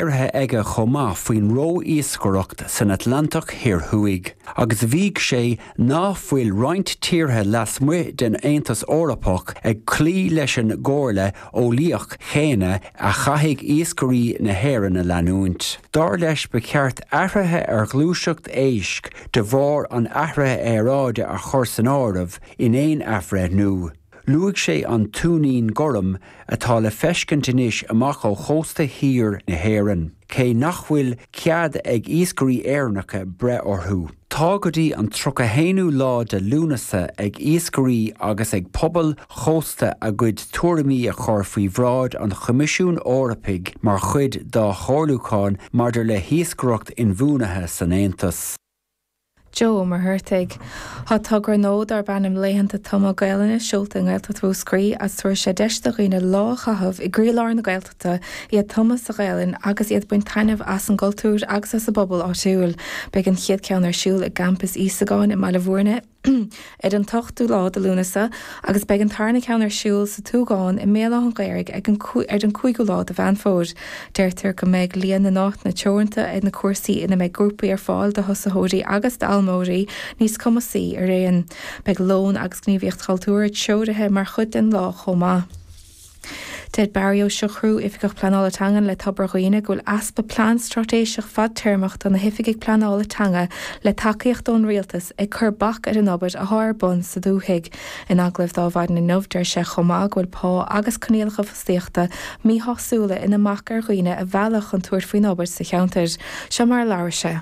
iarrtha aige chomh maith faoin ró-iascaireacht san Atlantach Thoir Thuaidh agus mhaígh sé ná fuil roinnt tíortha lasmuigh den Aontas Eorpach ag cloí leis an gcomhairle eolaíoch chéanna a chaithfidh iascairí na hÉireann a leanúint. Dar leis ba cheart athruithe ar ghluaiseacht éisc de bharr an athraithe aeráide a chur san áireamh in aon athbhreithniú. Luaigh sé an tuinnín gorm atá le feiscint anois amach ó chósta thiar na hÉireann, cé nach bhfuil cead ag iascairí Éireannacha breith orthu. Tá go dtí an 31ú lá de Lúnasa ag iascairí agus ag pobail chósta a gcuid tuairimí a chur faoi bhráid an Choimisiúin Eorpaigh mar chuid dá chomhairliúchán maidir le hiascaireacht inbhuanaithe san Aontas. Joe Ó Muircheartaigh. Tá togra nua darb ainm Laethanta Tumadh Gaelainne seolta i nGaeltacht Mhúscraí agus tabharfaidh sé deis do dhaoine lá a chaitheamh i gcroílár na Gaeltachta, iad tumtha sa Ghaelainn agus iad ag baint taitneamh as an gcultúr agus as an bpobal áitiúil. Beidh an chéad cheann ar siúl i gCampas Íosagáin i mBaile Mhúirne, ar an t-ochtú lá de Lúnasa agus beidh an tarna ceann ar siúl sa tSúgán i mBéal Átha'n Ghaorthaidh ar an gcúigiú lá de Mheán Fómhair. Deirtear go mbeidh líon na n-áiteanna teoranta ar na cúrsaí ina mbeidh grúpaí ar fáil do thosaitheoirí agus d'fhoghlaimeoirí níos cumasaí araon. Beidh lón agus gníomhaíocht chultúrtha treoirithe mar chuid den lá chomh maith. Deir Barry Ó Siochrú, Oifigeach Pleanála Teangan le Tobar Dhuibhne, go bhfuil easpa plean straitéiseach fadtéarmach do na hoifigigh pleanála teanga le tacaíocht ón Rialtas ag cur bac ar an obair athá ar bun sa dúthaigh. In agallamh dó maidin inniu, deir sé chomh maith go bhfuil pá agus coinníollacha fostaíochta míshásúla ina mbac ar dhaoine a mhealladh chun tabhairt faoin obair sa cheantar. Seo mar a labhair sé.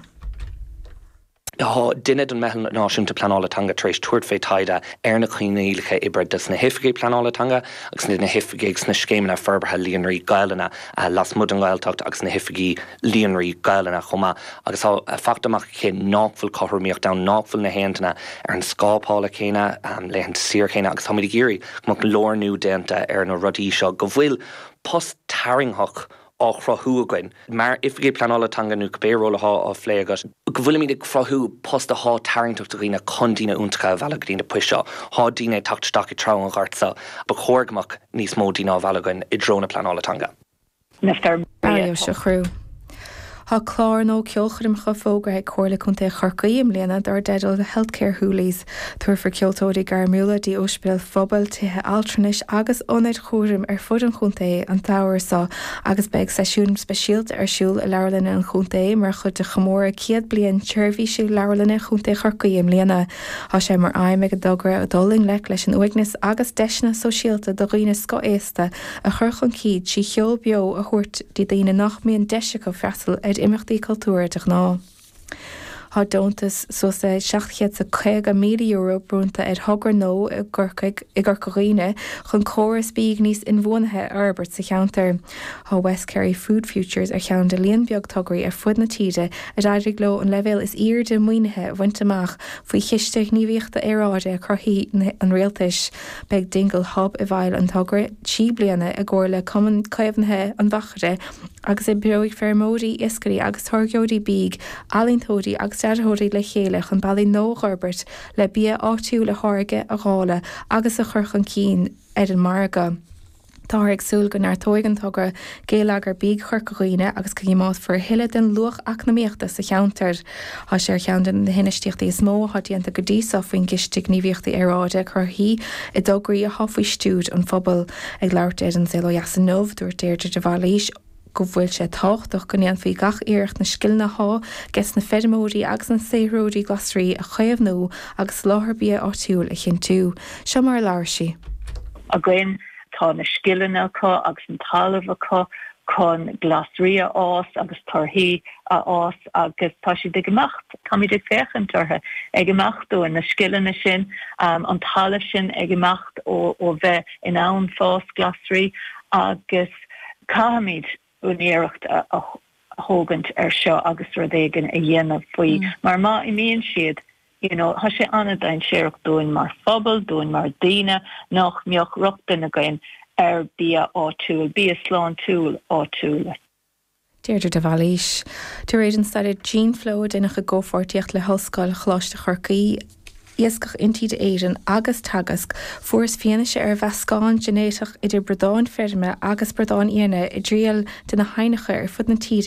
Tá duine den Mheitheal Náisiúnta Pleanála Teanga tar éis tabhairt fé taighde ar na coinníollacha oibre dos na hOifigigh Pleanála Teanga agus na hOifigigh sna scéimeanna forbartha líonraí Gaelainne lasmuigh den Ghaeltacht agus na hOifigigh Líonraí Gaelainne chomh maith agus tá fachta amach aici nách bhfuil cothromaíocht ann, nách bhfuil na héinne ar an scála pá céanna, laethanta saoire céanna agus táimid ag iarraidh go mbeadh lárnú déanta ar na rudaí seo go bhfuil post tarraingtheach á chruthú againn mar Oifigigh Pleanála Teanga, nó cibé ról atá á phlé agat, go bhfuilimid ag cruthú post atá tarraingteach do dhaoine chun daoine iontacha a mhealladh go dtí na poist seo. Tá daoine ag teacht isteach i dtreo an ghoirt seo ba chóir go mbeadh níos mó daoine á mhealladh againn i dtreo na pleanála teanga. Tá clár nua ceolchoirmeacha fógartha ag Comhairle Contae Chorcaí i mbliana dár dteideal 'The Healthcare Hoolies'. Tabharfar ceoltóirí gairmiúla dtí ospidéil phobail, tithe altranais agus ionaid chúraim ar fud an chontae an samhradh seo agus beidh seisiúin speisialta ar siúl i leabharlanna an chontae mar chuid de chomóradh céad bliain sheirbhísí Leabharlanna Chontae Chorcaí i mbliana. Tá sé mar aidhm ag an dtogra dul i ngleic leis an uaigneas agus deiseanna sóisialta do dhaoine scothaosta a chur chun cinn trí cheol beo a thabhairt do dhaoine nach mbíonn deis acu freastal ar imeachtaí cultúrtha de ghnáth. Tá deontas suas le €750,000 bronnta ar thogra Gnó i gCorcaigh i gCorca Dhuibhne chun córas bídh níos inbhuanaithe a fhorbairt sa cheantar. Tá West Kerry Food Futures ar cheann de líon beag tograí ar fud na tíre ar éirigh leo an leibhéal is airde maoinithe a bhaint amach faoi Chiste Gníomhaíochta Aeráide Chruthaithigh an Rialtais. Beidh Dingle Hub i bhfeighil an togra trí bliana i gcomhar le Cumann Caomhnaithe an Mhachaire, agus oibreoidh feirmeoirí, iascairí agus táirgeoirí bídh, ealaíontóirí agus dearthóirí le chéile chun bealaí nua a fhorbairt le bia áitiúil a tháirgeadh, a dháileadh agus a chur chun cinn ar an margadh. Táthar ag súil go neartóidh an togra geilleagar bídh Chorca Dhuibhne agus go gcoimeádfar a thuilleadh den luach eacnamaíochta sa cheantar. Tá sé ar cheann de na hinfheistíochtaí is mó atá déanta go dtí seo faoin gCiste Gníomhaíochta Aeráide Cruthaithí i dtograí atá faoi stiúir an phobail. Ag labhairt di ar An Saol Ó Dheas inniu, dúirt Deirdre de Bhailís, go bhfuil sé tábhachtach go ndéanfaí gach iarracht na scileanna atá ages na feirmeoirí agus na saothróirí glasraí a chaomhnú agus soláthar bia áitiúil a chinntiú. Seo mar a labhair sí. againn. Tá na scileanna acu agus an talamh acu chun glasraí a fhás agus torthaí a fhás agus tá siad ag imeacht. Táimid ag féachaint orthu ag imeacht uainn, na scileanna sin, an talamh sin ag imeacht ó bheith in ann fás glasraí agus. Caithfimid úinéireacht a thógaint ar seo agus rud éigin a dhéanamh faoi mar má imíonn siad, you know, tá sé ana-dhainséarach dúinn mar phobal, dúinn mar daoine nach mbeadh rochtain againn ar bia áitiúil, bia sláintiúil áitiúil. Deirdre de Bhailís. De réir an staidéir Geneflow, a deineadh i gcomhpháirtíocht le hOllscoil Choláiste Chorcaí, Iascach Intíre Éireann agus Teagasc, fuarthas fianaise ar mheascán ginéiteach idir bradáin feirme agus bradáin fhiaine i dtrian de na haibhneacha ar fud na tíre.